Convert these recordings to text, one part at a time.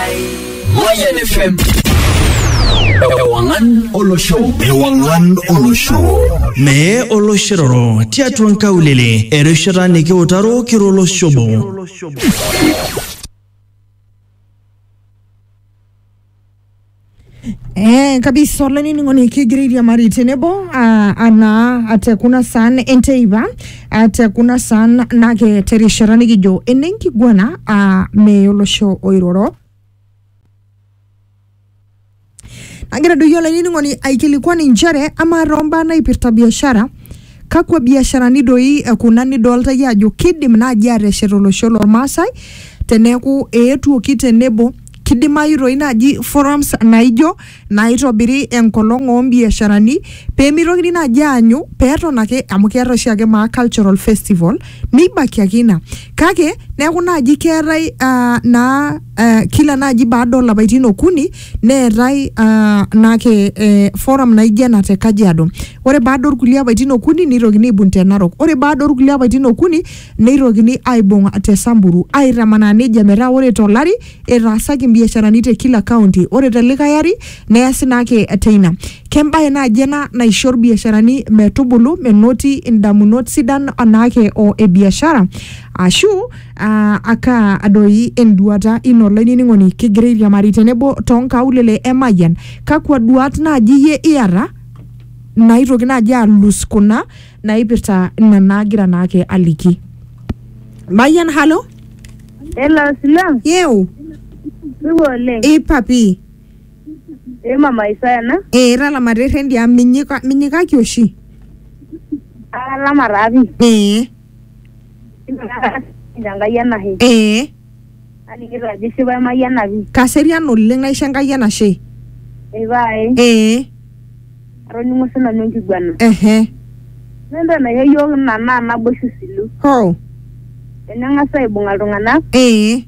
Mayan FM. Ewangan Olosho. Ewangan Olosho. Mee oloshiroro tiatua nkaulele erishata nikiutaro kiro oloshobo. Eh, kabisa olainining'oni kigira airiamari tenebo ah, anaa ate kuna saan enteipa ate kuna saan nake terishata nikijo enenkiguana ah, mee olosho oiroro nagira doi olainining'oni aikilikuan inchere amaa toombaa naipirta biashara kakwa biasharani doi eh, kuna nidolta iyie ajo kidim naaji ateshet olosho lormaasai teneeku eetuoki tenebo Kidimayu toi naaji forums naaijo naaitobiri enkolong oo mbiasharani pee meitokini naaji aanyu pee eton ake amu keetae oshiake maa cultural festival neibaiki ake ina kake neeku naaji keetae aa naa aa kila naaji baada oo lapaitin okuni neetae aa naake ee forum naaijo ena te Kajiado. Ore baada oo kulie apaitin okuni neitokini aibung te Narok. Ore baada oo kulie apaitin okuni neitokini aaibung te Samburu aaitamanaa neijia metaa ore to lari etaasaki mbiasharani te kila kaunti ore te likae ari neasi naa ake teina. Kembae naaji ena naisho lbiasharani metubulu menoti indamunot sidan anaake o e biashara aashu aa kaa doi enduata ino olainining'oni kigira airiamari tenebo too nkaulele e Mayian. Kakua duaat naaji iyie iyata naaitoki naaji aalus kuna naipirta ina naagira naake aliki. Mayian halo, Hello, Sila. yeu, Supa oleng. ipapi, Ee mama Isaya ena. ee italama te rrendi amu minyika, minyikaki oshi. Atalama taa pii. Ee, Enkai enashe. ee, Alikito ajo isipa emayiana pi. Kaserian oleng aisho Enkai enashe. Ipae. Ee. Atoning'o sinanu enkiguana. Ehe. Ore entoki naisho iyiook ina naa naboisho isilu. Hoo. Teneng'as aibung'a iltung'anak. Ee.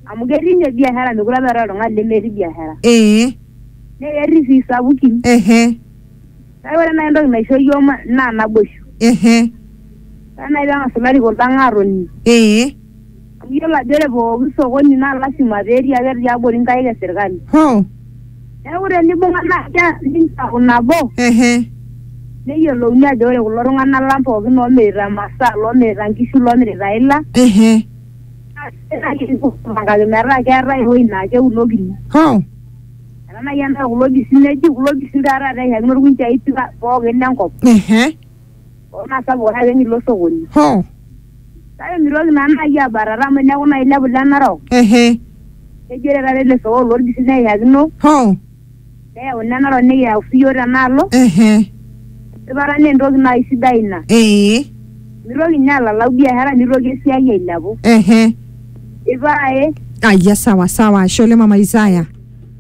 Amu ketii ninye biashara mekure apa eetae oltung'ani lemetii biashara. Ee. Naa ketii sii isapukin. Ehe. Kake ore naai entoki naisho iyiook naa naboisho. Ehe. Ore naai peng'as ilarikok lang aatoning. Ee. Amu iyiolo ajo ore pooki sokoni naa lasima pee etii ake tiabori nkaik e sirkali. Hoo. Neeku tenibung'a naa keas ninche aaku nabo. Ehe. Neyiolouni ajo ore kulo tung'anak lang pookin oomirita masaa, loomirita nkishu, loomirita ila. Ehe. Naa sidai naaji tenikipuo aipangaki metaa keetae ewueji naa keunokini. Hoo. Ena naaji enaa kulo bisinegi, kulo bisin taa taata eishakino ilkunjai pookin le nkop. Ehe. naa sapuk ake penyo ilo sokoni Ho. kake mitoki naa naaji abatata amu eneeku naaji ilepu ile narok Ehe. nejo ore taata ele sokoni lorpisi neiyakino Ho. neyau ine narok nikiyau siiyio tenaalo Ehe. esipata naa entoki naaji sidai ina Ee. mitoki ninye alalau biashara nitoki esiai ailepu Ehe. ipae Aya sawa sawa. Ashe oleng mama Isaya.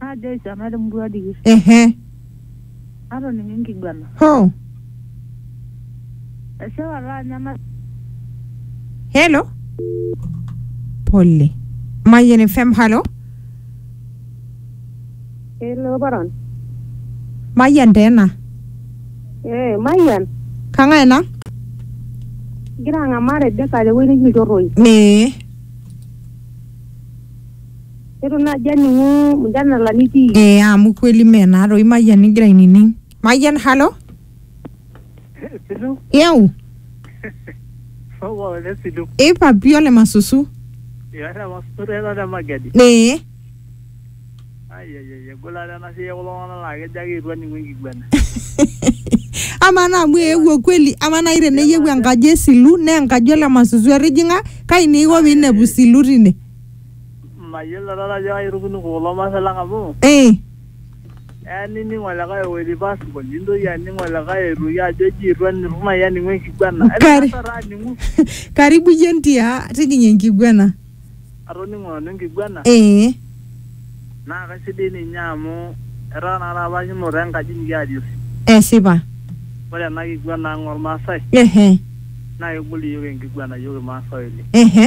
Ajo aisiana te murua dikir. Ehe. Atoning'o enkiguana. Hoo. Eshewa laanya na. Hello. Pole. Mayian FM, halo. Hello, paran. Mayian taa ena. Eh, Mayian. Kang'ae ena? Igira ang'amaa Rebecca tewueji neji ilchorroi. Ee. Itu naaji aning'u mjadala nitii. Ee amu kweli mee naa toi Mayian igira ainining. Mayian, halo? Silu, Yau, somo le Silu. ipa pii ole masusu. Iata masotu ena te Magadi. Ee, Ai ai ai egol ate ena siai ekulo tung'anak laa kejo ake eitu aning'u enkiguana. amaa naa amu eewuo kweli, amaa nai teneyieu enkaji e Silu naa enkaji ole masusu etijing'a, kai naa iko piinepu Silu tine? Mayiolo taata ajo kairukuni kulo maasai lang amu Eh, eya nining olikae ewoiti passport nintoki aning olikae aitoki ajo eji itu aniru nai aning'u enkiguana. Kari- Enaata taa aning'u karibu iyie ntia tijing'a enkiguena. atoning'o nanu enkiguana Eh, naa kaisidai ninye amu etaa naa taata apa kinoto enkaji nikiarie osim. esipa. Ore ena kiguana ang ormaasai Ehe, naa kegol iyiook enkiguana iyiook irmaasai oleng. ehe.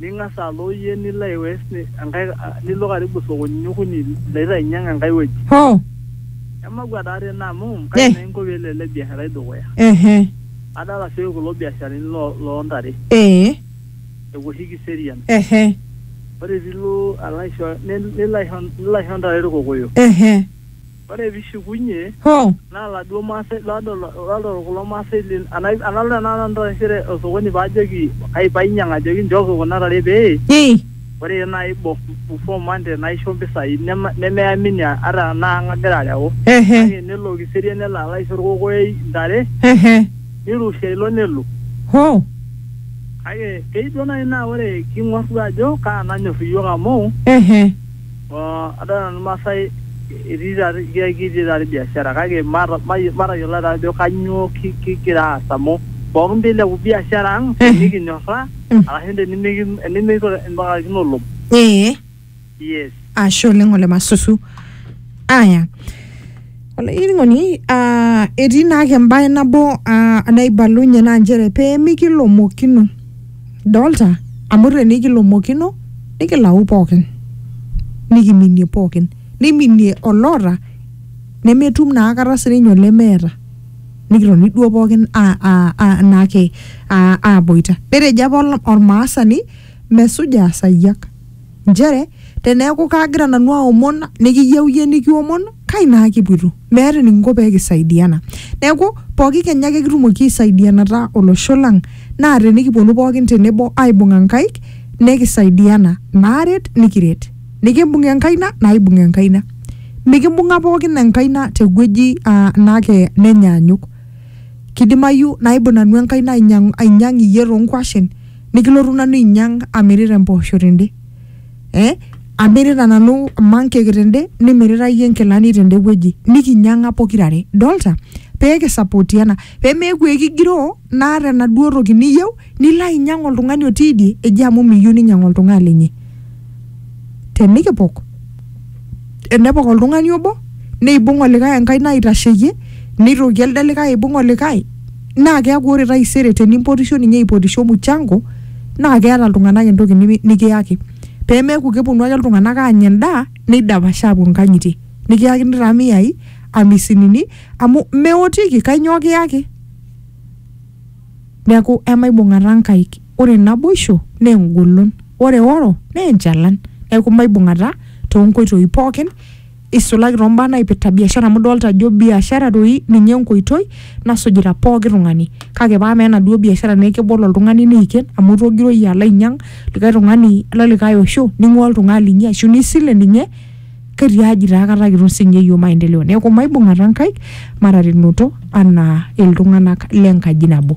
Ning'as alo iyie nilo aiwes enkae nilo karibu sokonini okuni laitanyiang enkae wueji. Hoo! Emakua taa tene amu kaji Eh! naa inko pee elo ele biasharai dukuya? Ehe! Adol asioki kulo biasharani lo loo ntare. Ee! Epuo oshi kiserian. Ehe! Ore pee ilo alo aisho nilo aisho ntare ilkokoyo. Ehe! Ore pishukunye Hoo! naa laduo maasai ladol ladol kulo maasai lin ana analo tenakata nanu taisere osokoni paajoki kai painyang' ajoki nchooki kuna tare pee Ii! ore nai bo before Monday naisho mpisai nema nemeamini ata anaa ang' agira areu Ehe! kake nelo Kiserian nelo alo aisho olkokoyoi ntare Ehe! nirrushia ilo nelo. Hoo! Kake kei duo nai naa ore king'or duo ajo kaa nanyorr iyiook amu Ehe! Adolta nanu irmaasai etii taata ketii taata biashara kake mata- mayi- matayiolo taa ajo kanyoo ki- kigira aas amu pookin pilepu biashara ang Eh. tenikinyorraa Mm. arashu tenimiki- tenimiko- tenimipakakino olom Ee. yes Ashe oleng ole Masusu. Aya. olainining'oni ah, etii naake embae nabo ah, naibalunye naa nchere pee mikilomokino dolta amu tenikilomokino nikilau pookin nikiminie pookin niminie oloota nemetum naa akata sininye olemeeta nikitoni duo pookin a- a- a- naake a- aboita netejo apa ol- ormaasani mesuja asayiak Nchere, teneaku kaagira nanu aomon nikiyieu iyie nikiomon, kai naa kipuito? Meeta enikinko pee kisaidiana. Neaku, pooki kenya ake kitumoki aisaidianata olosho lang naa tenikipuonu pooki tenebo aibung'a nkaik nekisaidiana. Naaret nikiret. Nikimbung enkaina naibung enkaina. Mikimbung'a pooki enkaina tewueji naa nenyaanyuk. Keidimayu naibung nanu enkaina ainyang iyie too nkuashen. nikilotu nanu ainyang amirita empoosho tende eh? amirita nanu mankeki tende nimirita iyie nkilani tende wueji nikinyang'a pokirare dolta pee kisapotiana pee meeku ekigiroo naata enaduo toki niyieu nilo ainyang oltung'ani otii idie eji amu miyieu ninyang oltung'ani linyi tenikipok enepok oltung'ani obo neibung olikae enkaina aitasheyie neitoki elde likae aibung olikae naa keeku ore taisere tenimpotisho ninye aipotisho muchango naa keeta iltung'anak entoki nimi- nikiyaki pemeeku keponu ake iltung'anak aanya endaa neidapashaa apuo inkang'itie nikiyakini taa miyai amisinini amu meotiki kainyoo kiyaki. Neaku, emaibung'ata nkaik. Ore naboisho naa engolon. Ore eoro naa enchalan. Neaku, maibung'ata too nkoitoi pooki eisulaki too mbaa naipirta biashara amu idolita ajo biashara doi ninye enkoitoi nasujita pooki tung'ani kake paa amaa enaduo biashara naa kebol oltung'ani neiken amu itogiroo iyie alo ainyang' likae tung'ani le likae osho ning'uaa oltung'ani linyi ashu nisile ninye. ketiaji taa kata kitum sinye iyiook maendeleo neeku maibung'ata nkaik mataretunoto anaa iltung'anak lenkaji nabo.